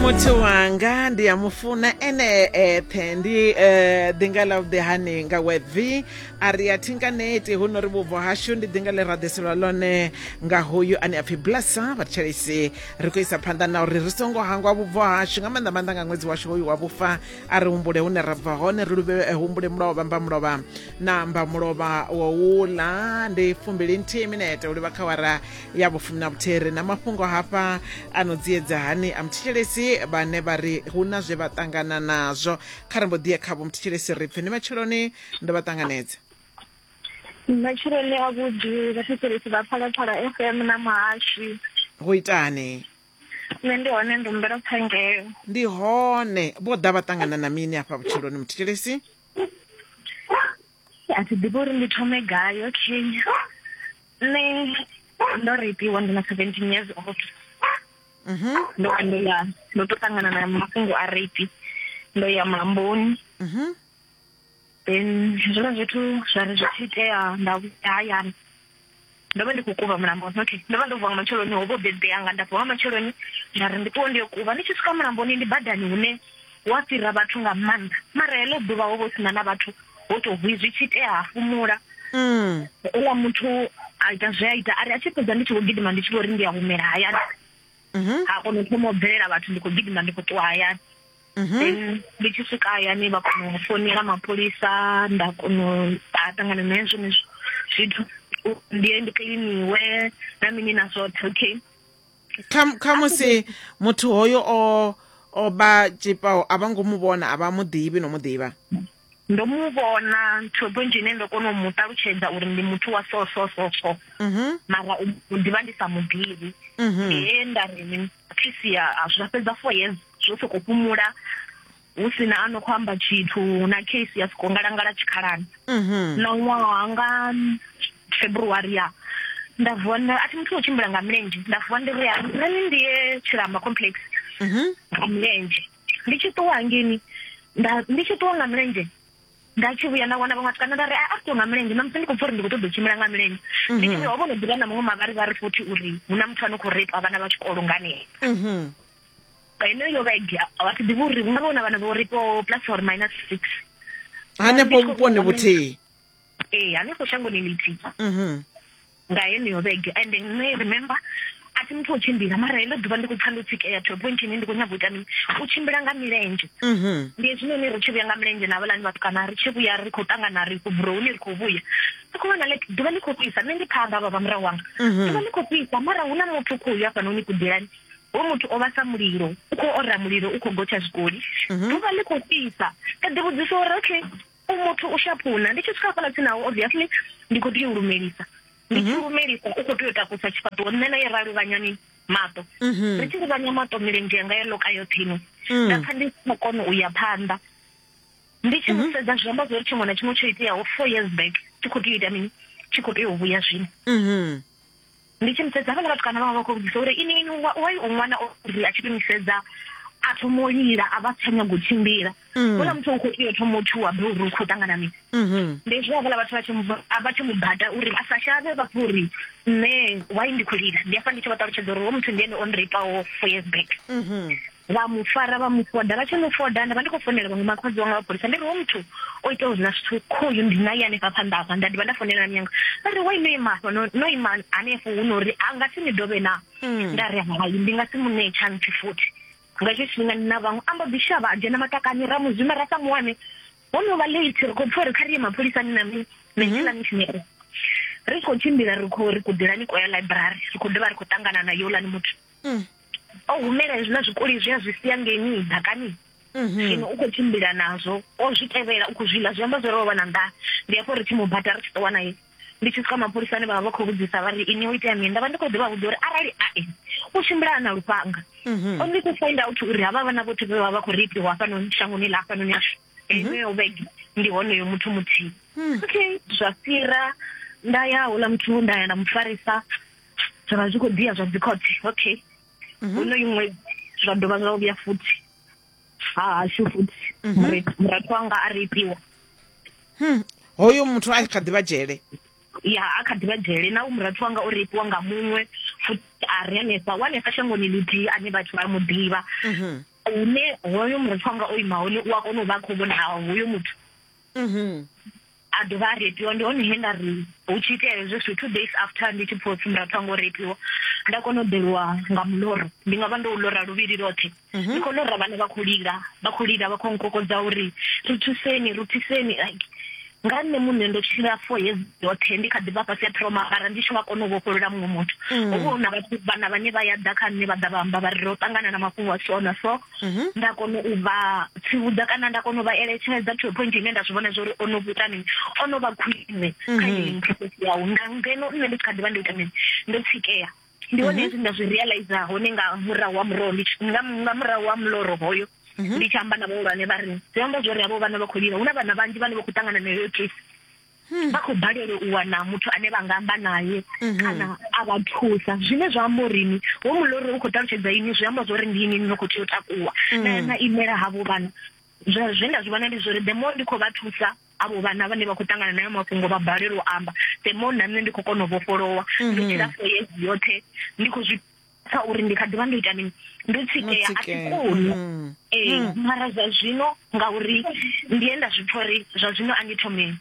muthu wanga ndi a mu funa ene eṱhe ndi eh, ḓinga ḽa vhuḓehani nga webvi a ri a thinkaneti hu no ri vhubvo hashu ndi ḓinga ḽe ra ḓiselwa ḽone nga hoyu ane a pfhi blasa vhathetshelesi ri khou isa phanḓa na uri ri songo hangwa vhubvo hashu nga maanḓa maanḓa nga ṅwedzi washu hoyu wa vhufa a ri humbule hune ra bva hone ri luvhe eh, humbule mulovha mba mulovha na mba mulovha wa uḽa ndi fumbili nthihi minete u livha khawara ya vhufumi na vhuthere na mafhungo hafha a no dziedza hani a muthetshelesi vhane vha ri hu na zwe vha ṱangana nazwo kha ri mbo ḓiya kha vho muthetshelesi ri pfe ni matsheloni ndo vha ṱanganedza matshiloni a vhuḓi vhathetshelesi vha phalaphala f m na muhashi go itani nṋe ndi hone ndi humbela phangelo ndi hone vho ḓa vha ṱangana na mini afha vhutshiloni muthetshelesi a thi ḓivhi uri ndi thome gai okay nṋe ndo reipiwa ndi na seventeen years old mhm. ndo vha ndo ya ndo to ṱangana na mafhungo a reipi ndo ya mulamboni mhm. then zwiḽa zwithu zwa ri zwi tshi itea nda vhuya hayani ndo vha ndi khou kuvha mulamboni okay ndo vha ndo vuwa nga matsheloni ho vho bebe yanga nda vuwa nga matsheloni nda ri ndi ṱuwe ndi yo kuvha ndi tshi swika mulamboni ndi badani hune Hu a fhira vhathu nga maanḓa mara heḽo ḓuvha ho vha hu sina na vhathu ho to hwi zwi tshi itea ha fumula mm. uḽa muthu a ita zwe a ita ari a tshi fhedza ndi tshi vho gidima ndi tshi vho ri ndi a humela hayani mhm. ha kona u thoma u bvelela vhathu ndi khou gidima ndi khou ṱuwa hayani mhm. then ndi tshi swika hayani vha kona u founela mapholisa nda kona u ṱangana na hezwo zwithu ndi ndi kiḽiniwe na mini na zwoṱhe okay kha musi muthu hoyo o o vha tshipao a vha ngo mu vhona a vha mu ḓivhi no mu ḓivha ndo mu vhona ntho dzo nzhi ine ndo kona u mu ṱalutshedza uri ndi muthu wa so so so so mhm. mara u ḓivha ndi sa mu ḓivhi mhm. ee nda ri ni thisia zwa fhedza four years zwo sokou fhumula hu si na a no khou amba tshithu na case ya soko ngalangala tshikhalani mhm. na ṅwaha nga february ya nda vuwa a thi muthu o tshimbila nga milenzhe nda vuwa ndi ri nṋe ndi ye tshilamba complex mhm. nga milenzhe ndi tshi ṱuwa hangeni ndi tshi ṱuwa nga milenzhe nda tshi vhuya nda wana vhaṅwe vhatukana nda ri a a ṱuwa nga milenzhe namusi ndi khou pfa uri ndi khou ṱoḓa u tshimbila nga milenzhe mhm. ndi tshi ho vhono ḓivha na muṅwe mavharivhari futhi uri hu na muthu a no khou repa vhana vha tshikolo nganee heneyo vhege vha si ḓivhi uri vhunga vhona vhana vho ri po plus or minus six hanefho vhuponi vhuthihi ee hanefho shangoni lithihi mhm. nga heneyo vhege and nṋe remember a thi muthu o tshimbila mara heḽo ḓuvha ndi khou pfa ndo tsikeya to point ine ndi khou nyaga u ita mini u tshimbila nga milenzhe mhm. ndi hezwinoni ri tshi vhuya nga milenzhe na vhalani vhatukana ri tshi vhuya ri khou ṱangana ri khou buroni ri khou vhuya ri khou vhona like ḓuvha ḽi khou fhisa nṋe ndi phanḓa vha vha murahu wanga mhm. ḓuvha ḽi khou fhisa mara hu na muthu khou ya fhanoni kuḓelani Hoyu muthu o vha sa mulilo, u khou ora mulilo, u khou gotsha zwikoli. Mhm. Ḓuvha ḽi khou fhisa. Nda ḓi vhudzisa uri okay, u muthu u shaphuna. Ndi tshi swika hafhaḽa tsini nawo, obviously ndi khou tea u lumelisa. Ndi tshi mhm. lumelisa, u khou tea u takusa tshifhaṱuwo. Nṋe na ye ra luvhanyani maṱo. Mhm. Ri tshi luvhanya maṱo milenzhe yanga yo loka yoṱhe ino. Mm. Nda pfa ndi si khou kona u ya phanḓa. Ndi tshi mu sedza zwi amba zwori tshiṅwe na tshiṅwe tsho iteaho four years back tshi khou tea u ita mini? Tshi khou tea u vhuya zwino. Ndi tshi mu sedza havhaḽa vhatukana vha vha vha khou vhudzisa uri ini ini wai u ṅwana o ri a tshi to mu sedza a thoma u lila a vha tsha nyago u tshimbila mm. houḽa muthu u khou tea u thoma u tshuwa be uri u khou ṱangana mini mm-hmm. ndi zwi havhaḽa vhathu vha tshi mu bata uri a sa shavhe vha pfa uri nṋe wai ndi khou lila ndi afha ndi tshi vha ṱalutshedza uri ho muthu ndi ene o nreipao four years back mm-hmm. vha mu fara vha mu foda vha tshi mu foda nda vha ndi khou fonela vhaṅwe makhadzi wanga vha pholisa ndi ri wo muthu o ita uri na zwithu khoyu ndi naye hanefha phanḓa hafha nda dovha nda fonela miyanga vha ri wa ino ima hafha no ima hanefho hu no uri a nga si ni dovhe na mm. nda ri hai ndi nga si mu ṋee tshantsi futhi nga tsho tshifhinga ndi na vhaṅwe amba ḓi shavha a dzhena matakani ra mu zwima ra sa muwane ho no vha late ri khou pfa uri kha ri ye mapholisani na mini na nṋe na mishinere ri khou tshimbila ri khou ri kuḓelani kwa ya library ri khou dovha ri khou ṱangana na youlani muthu mm. o humela hezwiḽa zwikoli zwi a zwi sia ngeni ḓakani mhm. zwino u khou tshimbila nazwo o zwi tevhela u khou zwi ḽa zwi amba zwo ri o vha na nḓa ndi hafho ri tshi mu bata ri tshi ṱuwa naye ndi tshi swika mapholisani vha vha vha khou vhudzisa vha ri ini o itea mini nda vha ndi khou ḓivha vhudza uri arali ae u tshimbila na lufhanga mhm. only to find out uri havha vhana vhothe vhe vha vha khou reipiwa hafhanoni shangoni ḽa hafhanoni ashu eneyo vhege ndi honoyo muthu muthihi hmm. okay zwa fhira nda ya hula muthu nda ya nda mu farisa zwa vha zwi khou dia zwa dzi khothe okay mhm. honoyo ṅwedzi zwa dovha zwa vhuya futhi ha hashu futhi mhm. murathu wanga a ri itiwa hmm. hoyo muthu a kha ḓivha dzhele ya a kha ḓivha dzhele na u murathu wanga o reipiwa nga muṅwe futhi a ri hanefha wanefha shangoni lithihi ane vhathu vha mu ḓivha mhm. hune hoyo murephi wanga o ima hone u a kona u vha a khou vhona hoyo muthu mhm. a dovha a repiwa ndi hone he nda ri hu tshi itea hezwo zwithu two days after ndi tshi phosi murapha ngo repiwa nda kona u ḓeliwa nga muloro ndi nga vha ndo u lora luvhili lothe mhm. ndi khou lora vhane vha khou lila vha khou lila vha khou nkokodza uri ri thuseni ri thuseni like nga nṋe muṋe ndo tshila for hezi yoṱhe ndi kha ḓi vha fhasi ya thoma ara ndi tshi nga kona u vhofholola muṅwe muthu mm. hovha hu na vhathu vhana vhane vha ya ḓa kha nṋe vha ḓa vha amba vha ri ro ṱangana na mafhungo a so na so mm-hmm. nda kona u vha tsivhudza kana nda kona u vha eletshedza to point ine nda zwi vhona zwa uri o no vhuita mini o no vha khwine kha mm-hmm. yeyi process yawu nga ngeno nṋe ndi tshi kha ḓi vha ndo ita mini ndo tsikea ndi hone mhm. hezwi nda zwi realize hone nga murahu wa muroho ndi nga murahu wa muloro hoyo mhm. ndi tshi amba na vhahulwane vha ri zwi amba zwori havho vhana vha khou lila hu na vhana vhanzhi vhane vha khou ṱangana na heyo case hmm. vha khou balelwa u wana muthu ane vha nga amba naye mhm. kana a vha thusa zwine zwa amba urini wo muloro u khou ṱalutshedza ini zwi amba zwori ndi ini ni khou tea u takuwa hmm. na imela havho vhana Zwe, zwe nda zwi vhona ndi zwori the more ndi khou vha thusa avho vhana vhane vha khou ṱangana nayo mafhungo vha balelwa u amba the more na nṋe ndi khou kona u vhofholowa mhm. ndo tshila for years yoṱhe ndi khou zwi pfa uri ndi kha ḓivha ndo ita mini ndo tsikeya a thi koni mhm. ee eh, mhm. mara zwa zwino ngauri ndi ye nda zwi pfa uri zwa zwino a ndi thome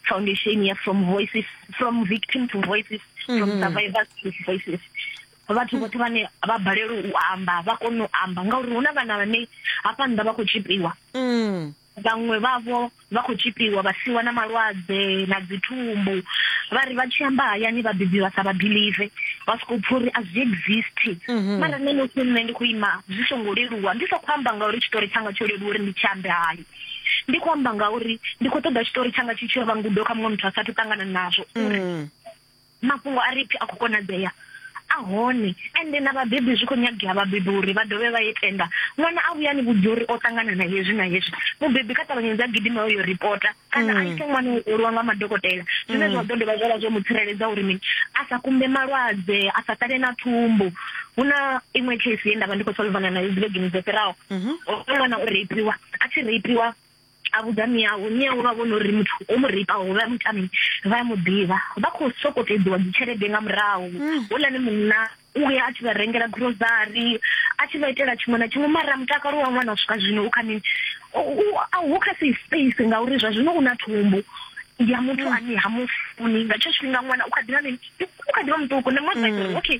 foundation ya from voices from victim to voices from survivors to voices vhathu mm. vhoṱhe vhane vha balelwa u amba vha kone u amba ngauri hu na vhana vhane hafha nnḓa vha khou tshipiwa mm. vhaṅwe vhavho vha khou tshipiwa vha siwa na malwadze na dzithumbu vha ri vha tshi amba hayani vhabebi vha sa vha believe vha sokou pfha uri a zwi exist mm-hmm. mara nṋe nosi nṋe ndi khou ima zwi songo leluwa ndi sa khou amba ngauri tshitori tshanga tsho leluwa uri ndi tshi ambe hayo ndi khou amba ngauri ndi khou ṱoḓa tshitori tshanga tshi tshi yo vha ngudo kha muṅwe muthu a sathu ṱangana nazwo mm. mafhungo a ripfi a khou konadzea a hone ende na vhabebi zwi khou nyagea vhabebi uri vha dovhe vha ye tenda ṅwana a vhuyani vhudzi uri o ṱangana na hezwi na hezwi mubebi kha ṱavhanyedza a gidima uyo ripota kana a mm. ise ṅwana u olwa nga madokotela zwine mm. zwa ḓo dovha zwavha zwo mu tsireledza uri mini a sa kumbe malwadze a sa ṱale na thumbu hu na iṅwe case ye nda vha ndi khou solvana nayo dzivhegini dzo fhiraho mhm. ṅwana o reipiwa a tshi reipiwa a vhudza miau miau vha vhona uri muthu o mu reipaho vha mu tami vha mu ḓivha vha khou sokou tedziwa dzi tshelede nga murahu mm. houḽani munna u ya a tshi vha rengela grocery a tshi vha itela tshiṅwe na tshiṅwe mara mutakalo wa ṅwana u swika zwino u kha mini a hu kha safe space ngauri zwa zwino u na thumbu ya muthu mm. ane ha mu funi nga tsho tshifhinga ṅwana u kha ḓivha mini u kha ḓivha muṱuku na muthu mm. okay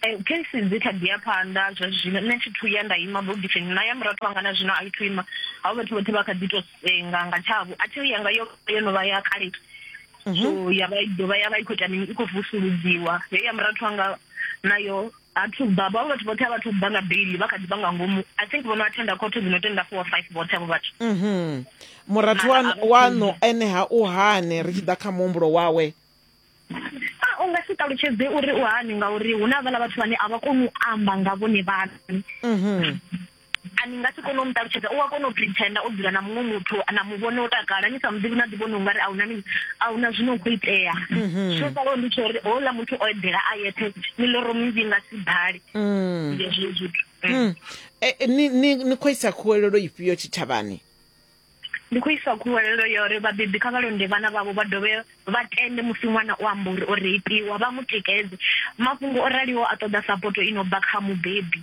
Eh, case dzi kha ḓi ya phanḓa zwa zwino nṋe thi thu ya nda ima bogifini na ya murathu wanga na zwino a i thu ima havho vhathu vhoṱhe vha kha ḓi tou senga nga tshavho a thiyo yanga yo yo no vha ya kale mhm. so ya vha dovha ya vha i khou ita mini i khou vusuludziwa yo ya murathu wanga nayo a thu bva vhavho vhathu vhoṱhe a vha thu bva nga beili vha kha ḓi vha nga ngomu i think vho no athenda khothe dzi no tenda four five vhoṱhe avho vhathu mhm. murathu waṋu ene ha u hane ri tshi ḓa kha muhumbulo wawe a u nga si ṱalutshedze uri u hani ngauri hu na vhala vhathu vhane a vha koni u amba nga vhone vhaṋe mhm. a ni nga si kone u mu ṱalutshedza u a kona u pretenda o dzula na muṅwe muthu na mu vhone o takala ni sa mu ḓivhi na ḓi vhona ungari a huna mini a huna zwino khou itea mhm. zwo sala ndi tsho uri houḽa muthu o eḓela a yeṱhe miḽoro minzhi nga si ḓale mm. ndi hezwo zwithu mm. eh, eh, ni khou isa khuwelelo ifhio tshitshavhani Ndi khou isa khuwelelo ya uri vhabebi kha vha londe vhana vhavho vha dovhe vha tende musi ṅwana o amba uri o reipiwa, vha mu tikedze. Mafhungo o raliho a ṱoḓa sapoto i no bva kha mubebi,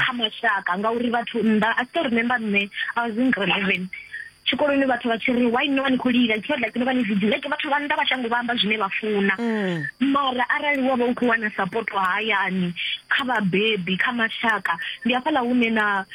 kha mashaka ngauri vhathu nnḓa, I still remember nṋe I was in grade 11, tshikoloni vhathu vha tshi ri why no vha ni khou lila, it's not like no vha ni vigilant, vhathu vha nnḓa vha shango vha amba zwine vha funa. Mara arali wa vha u khou wana sapoto hayani, kha vhabebi, kha mashaka, ndi hafhaḽa hune na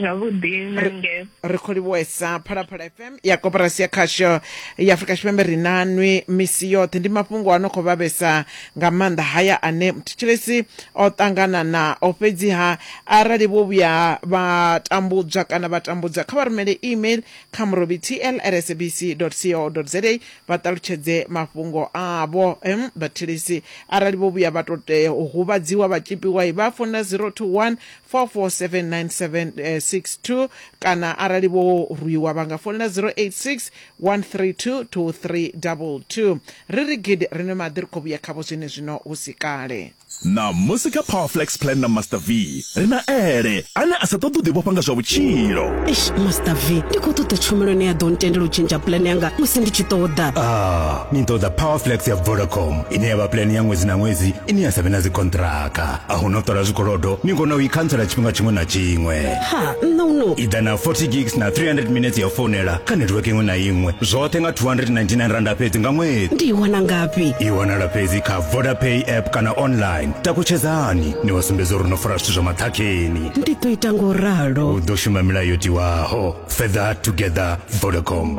zwavhuḓi na nge ri khou livhuwesa phalaphala fm ya koporasi ya khasho ya afurika tshipembe ri na nwi misi yoṱhe ndi mafhungo a no khou vhavhesa nga maanḓa haya ane muthetshelesi o ṱangana nao fhedziha arali vho vhuya vha tambudzwa kana vha tambudzwa kha vha rumele email kha murobi tlrsabc co za vha ṱalutshedze mafhungo avho em vhathelesi arali vho vhuya vha to tea u huvhadziwa vha tshipiwa vha founela 021 4479762 kana arali vho rwiwa vha nga founela 086 132 2322 ri ri gidi ri nwe maḓi ri khou vhuya khavho zwenezwino hu si kale Ṋamusi kha Powerflex Plan na Master V ri na Ele ane a sa ṱoḓi u ḓivhofha nga zwa vhutshilo. Eish Master V, ndi khou ṱoḓa tshumelo ine ya ḓo ntendela u tshentsha plan yanga musi ndi tshi ṱoḓa. Ah, ni ṱoḓa Powerflex ya Vodacom ine ya vha plan ya ṅwedzi na ṅwedzi ine ya sa vhe na dzikhonṱhiraka. a hu no ṱola zwikolodo ni kona u i khantsela tshifhinga tshiṅwe na tshiṅwe ha nṋe uno i ḓa na 40 gigs na 300 minutes ya founela kha network iṅwe na iṅwe zwoṱhe nga 299 randa fhedzi nga ṅwedzi ndi i wana ngafhi i wanala fhedzi kha vodapay app kana online takutshedzani ni wa sumbedza uri no fara zwithu zwa maṱhakheni ndi ḓo ita ngo ralo u ḓo shuma milayo tiwaho further together vodacom